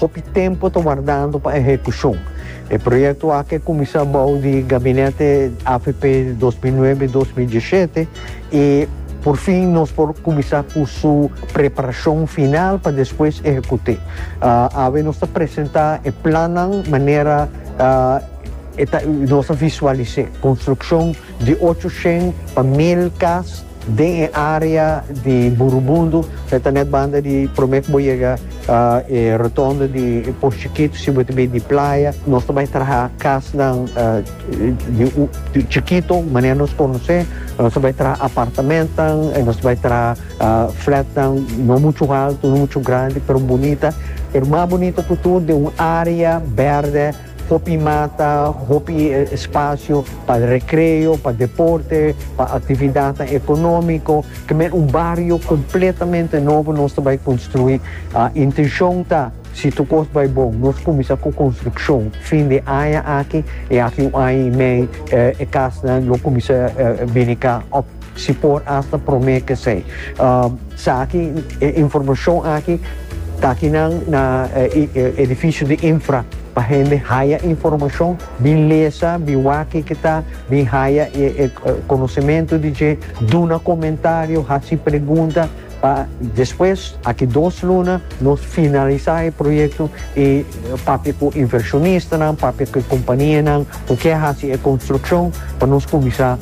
Hopi tempo ta wardando pa ehekushon. E proyekto aki a kuminsá bou di gabinete avp dos mil nuebe, dos mil diesshete i por fin nos por kuminsá ku su preparashon final pa despues ehekut'é. Awe nos ta presentá e plannan manera e ta nos a visualis'é, konstrukshon di ocho shen pa mil kas, Den e area di Burubundu, e ta net banda di prome ku bo yega e rotondo di Pos Chikito, si bo ta bai di playa, nos ta bai traha kasnan di chikito, manera nos konos'é, nos ta bai traha apartamentnan, nos ta bai traha flatnan no muchu haltu, no muchu grandi, pero bunita, pero mas bunita ku tur den un area bèrdè. Hopi mata, hopi spasio pa rekreo, pa deporte, pa aktividatnan ekonómiko, kemey un bario kompletamente nobo nos ta bai konstruí. Intenshon ta si tur kos bai bon nos kuminsá ku konstrukshon fin di aña aki, e aki un aña i mei e kasnan lo kuminsá bini ka. Si por asta prome kesey. Sa aki e informashon aki ta aki nan na edifisio di infra pa hende haya informashon bin lesa bin wak kiko ta bin haya konosementu di dje duna komentario hasi pregunta Pa despues, aki dos luna, nos finalisá e proyekto i papia ku invershonistanan, papia ku e kompanianan ku ke hasi e konstrukshon pa nos kuminsá,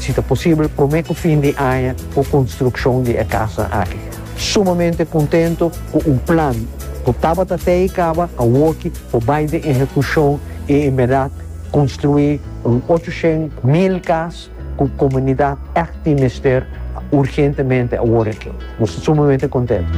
si ta posibel, promé ku fin di aña ku konstrukshon di e kasnan aki. Sumamente kontentu ku un plan ku tabata te i kaba awoki por bai den ehekushon i en berdat konstruí un ocho shen mil kas. Cu comunidad ect tin mester urgentemente awor aki. Nos ta sumamente contento.